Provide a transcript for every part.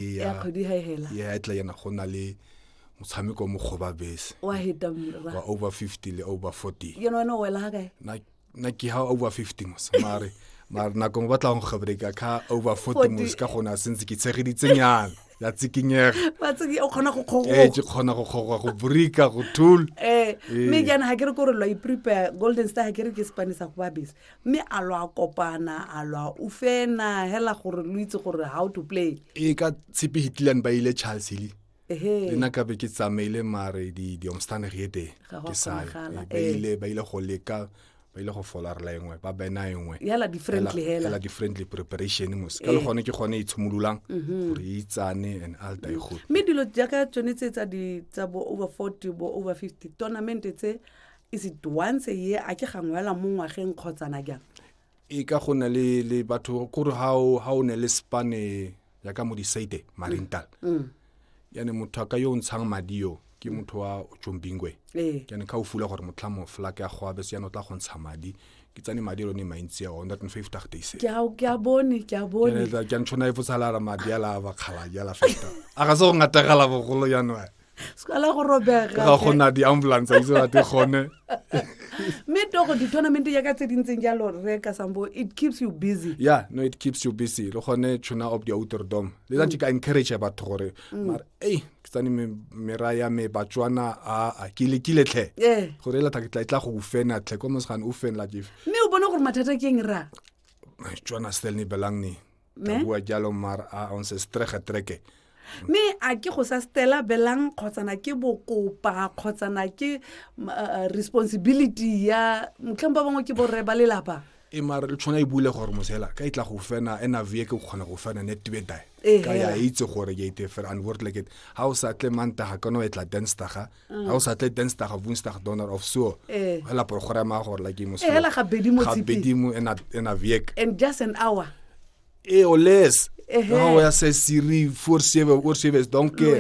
ya kgwedi ha e hela ya e tla yana go na le motshameko mo kgoba bese wa heta mmerwa wa over 50 le over 40 yena wena o wela ha kae na na ke ha over 50 mos mare mare na go batla go gabreka ka over 40 mos ka gona sentse ke tshegeditse nyana ya tsikinyega ba tsiki o khona go khogo eh ke khona go khogo go burika go thul eh, eh. me jana ha ke re go re lo i prepare golden star ha ke re ke spanisa go ba bese mme a lo a kopana a lo a ufena hela gore lo itse gore how to play e ka tshepe hitlan ba ile charles hile le nna ka be ke tsamaile mare diomstane re eteng ke sa eh. ba ile go leka ba ile go folarela engwe ba bena engwe hela di-friendly preparation mos ka le eh. gone ke gone e tshimololang mhm. gore e itsane and alta e gole mme dilo jaaka tsone tse tsa bo over forty bo over fifty tournament tse is it once a year a ke gangwe fela mo ngwageng kgotsana jang e ka go na le le batho kore ha o ha o ne le spane ya ka mo disaite marental Mm. yane motho a ka yo o ntshang madi yo ke motho wa tsombingwe ee yane ka o fula gore motlhamo fela ke a go abese yana o tla go ntsha madi ke tsane madi lone mantsi a one that fifty days ke a ke a bone ke a bone ke a ntshona e fotsalara madi a la bakgala jala feta a ga se go ngategela bogolo yanwa sekala go robega ga go na di-ambulance itse bate gone mme togo di-tournament ya ka tse dintseng jalo re ka sambo it keeps you busy yeah no it keeps you busy le gone tuna of the outer dome le tsa mm. ka encourage batho gore mm. mara ei ke tsane mera ya me batswana a ke lekile tlhe eh. gore e latha ke tla e tla go ufena tlhe ko mosgane ufenela jefe mme o bone gore mathata ke eng ra tswana stel ni belang ni Me? bua jalo mar a on se strege treke mme a ke go sa stela belang kgotsana ke bokopa kgotsana ke m- uh, responsibility ya motlheng ba bangwe ke borre ba lelapa e mare le tshwana e bule gore mosela ka e tla go fena e na vie ke kgona go fena ne tibetae Ee, ka ya hela. itse gore ke ite fela and word like it ha o sa tle mantaga ka no e tla denstaga Mm. ga o sa tle denstag of winstag donor of so eh. hela program a gore la ke mosela ga bedimo ga bedimo ena ena viek and just an hour e o less no o ya se siri for save or save don't care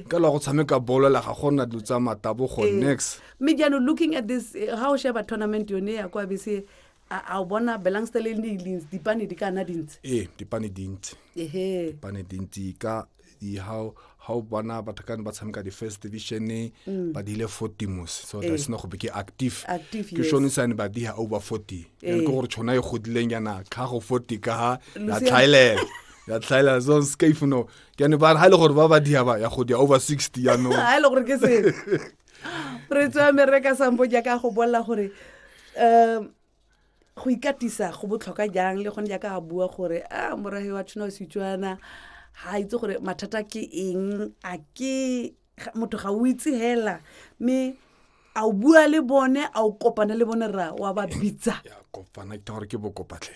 ka la go tshameka bolo la ga gona dilo tsa matabo go eh. next me jano looking at this eh, how sheba tournament yone ya kwa bese a a o bona belangsta le di lins dipane di kana dintsi ee dipane dintsi ehe dipane dintsi ka di- ha o- ha o bona batho kane ba tshameka di-first division Mm. ba dile fortimos so Ee. that's not go be ke active Active, ke yes. shone sane ba diha over forty Ee. and ke gore tšhona e godileng yana tlhago forty ka ha ya Lucia- tlhaelela ya tlhaelela so scafe no ke ane ba re ha e le gore ba ba diha ba ya go dia over sixty yanong a e le gore ke se re tswa me re ka sampo jaaka go bolela gore um go ikatisa go botlhokwa jang le gone jaaka a bua gore a morage wa tshwana setswana ga a itse gore mathata ke eng a ke motho ga o itse hela mme a o bua le bone a o kopane le bone ra wa ba bitsa kopana ke gore ke bokopatlhe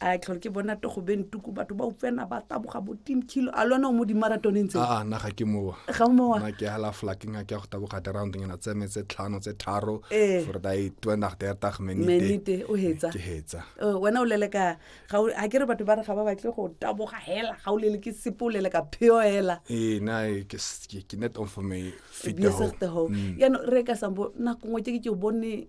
a tlhore ke bona togo bentuku batho ba utlwena ba taboga bo team kilo a lona o mo dimaratoneng tse a na ga ke mowa ga o mowa na ke hala flaking ke go taboga round ngena tse me tse tlhano tse tharo eh. for da i twa nach der tag menite menite o hetsa ke hetsa oh, wena o lele ka ga o ha ke re batho ba re ga ba batle go taboga hela ga o lele ke sipo lele ka pheo hela eh na e, ke ke net on for me fit the home ya no re ka sambo na kongwe ke ke bone